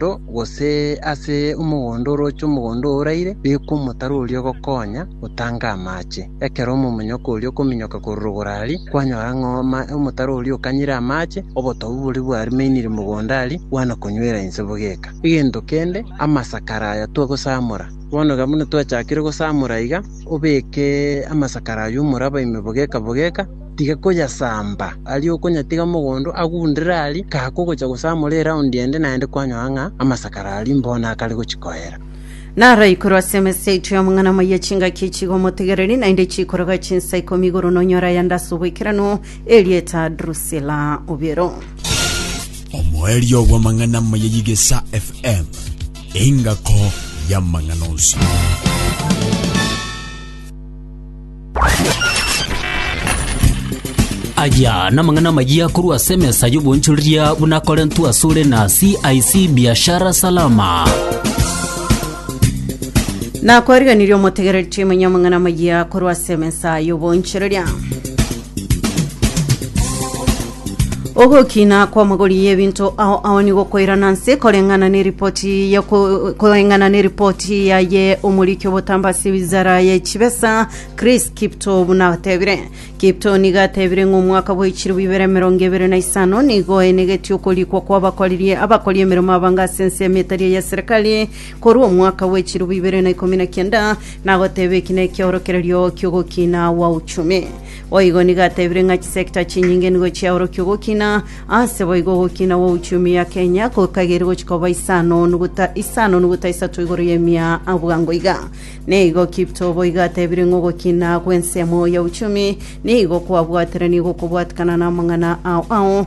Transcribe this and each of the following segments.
omogondo, gose ase omogondo orooche omogondo oraire, bekwa omotaro oria ogokonya gotanga amaache. Ekero omomoinyoka oria okominyoka korwa rogoro aria, kwanyora ng'a omotaro oria okanyire amaache, obotobu boria bwarimainire mogondo aria bwanakonyuera inse bogeka. Egento kende, amasakara aya twagosamora. Bono iga buna twachakire gosamora iga, obeke amasakara aywo omoraba ime bogeka bogeka. tiga koyasamba, aria okonyatiga mogondo agundere aria, kaa kogocha gosamora eraundi ende naende kwanyora ng'a amasakara aria mbono akare gochia koera. Naro igoro ase emesa yaito y'omong'ana moyia chingaki chigo omotegereri, naende chikorogwa chinsa ikomi igoro nonyore aya ande ase obwekeranu, erieta Drusila Obiero. Omoerio bw'amang'ana maya y'Igesa FM, engako y'amang'ana onsi. Aya namang'ana amayia korwa ase emesa y'obonchoreria buna Korinto asore na CIC Biashara Salama. Nakwariganirie omotegereri Tim Nyamang'ana Mayia korwa ase emesa y'obonchereria. Ogokina kw'amagori y'ebinto ao ao nigo koirana nse koreng'ana n'eripoti ya ko- koreng'ana n'eripoti yaye omoriki obotamba ase wizara ye chibesa Chris Kipto buna atebire. Kipto nigo atebire ng'a omwaka bwa echiribu ibere emerongo ebere na isano nigo enegetie okorikwa kw'abakoriri abakori emeremo abange ase ensemo etari eya serikali, Korwa omwaka bwe chirubu ibere na ikomi na kianda nagoteeba eki nekiorokererio ki'ogokina gwa uchumi. Boigo nigo ateebire ng'a chisector chinyinge nigo chiaorokia ogokina, ase boigo ogokina gwa uchumi ya Kenya kokageire gochia koba isano nuguta isano nuguta isato igoro y'emia a bwango iga. Nigo Kiptoo boigo ateebire ng'a ogokina gw'ensemo ya uchumi nigo kwabwateranie gokobwatekana namang'ana ao ao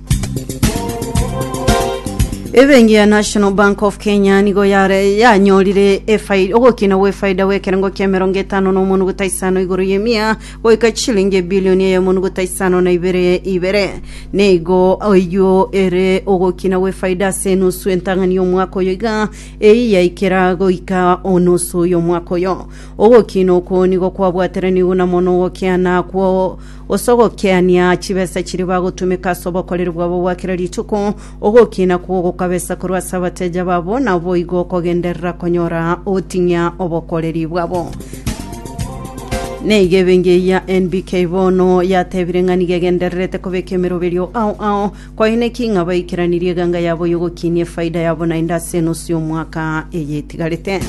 Ebenki ya National Bank of Kenya nigo yare yanyorire efai- ogokina gwefaida gwekerengo kia emerongo etano na omonuguta isano igoro y'emia goika chilingi ebilioni eye omonuguta isano na ibere ibere nigo oyio ere ogokina gwefaida ase enusu entang'ani y'omwaka oyo iga eyi yaikera goika onusu y'omwaka oyo ogokina okwo nigo kwabwateranigwe na mono ogokiana kwo gose ogokiania chibesa chiria bagotumeka ase obokoreri bwabo bwa kera rituko, ogokiina kwo gokabesa korwa ase abateja babo, na boigo okogenderera konyora ogoting'ia obokoreri bwabo. Neiga ebengi eyia NBK bono yatebire ng'a nigo egendererete kobeka emeroberio ao ao Kwaineki ng'a baikeranirie eganga yabo y'ogokinia efaida yabo naende ase enusu y'omwaka eye etigarete.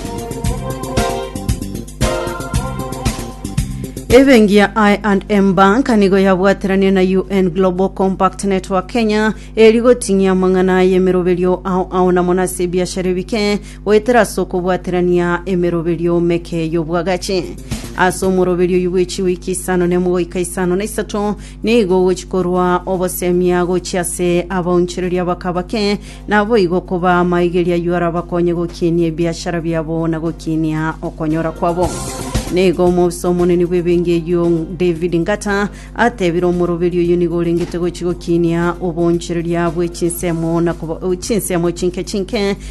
Ebenki ya I&M Bank nigo yabwateranirie na UN Global Compact Network Kenya eri goting'ia amang'ana y'emeroberio ao ao na mono ase ebiashara ebike goetera ase okobwaterania emeroberio meke y'obwagachi. Ase omoroberio oyio bw'echiwiki isano na emo goika isano na isato, Nigo ogochia korwa obosemia gochia ase abaonchoreria ba kabake, naboigo koba amaigeria ayio arabakonye gokinia ebiachara biabo na gokinia okonyora kwabo. Nigo omobisa omonene bw'ebenki eyio David Ngata atebire omoroberi oyio nigo orengete gochia gokinia oboonchoreria bwe chinsemo na koba- chinsemo chinke chinke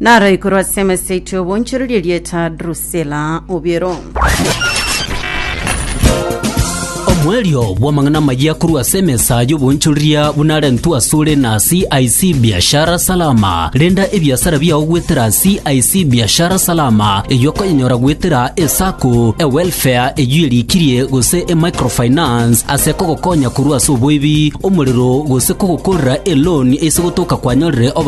Naro igoro ase emeseiti obonchorerie rieta Drusila obiero. Omoerio bw'amang'ana amayia korwa ase emesa y'obonchoreria buna arentwe asore na CIC Biashara Salama. Renda ebiasara biao goetera CIC Biashara Salama, eyio okonyenyora goetera eSacco, eWelfare eyio erikirie gose eMicrofinance ase kogokonya korwa ase oboibi, omorero gose kogokorera eloan ase gotoka kwanyorire oboke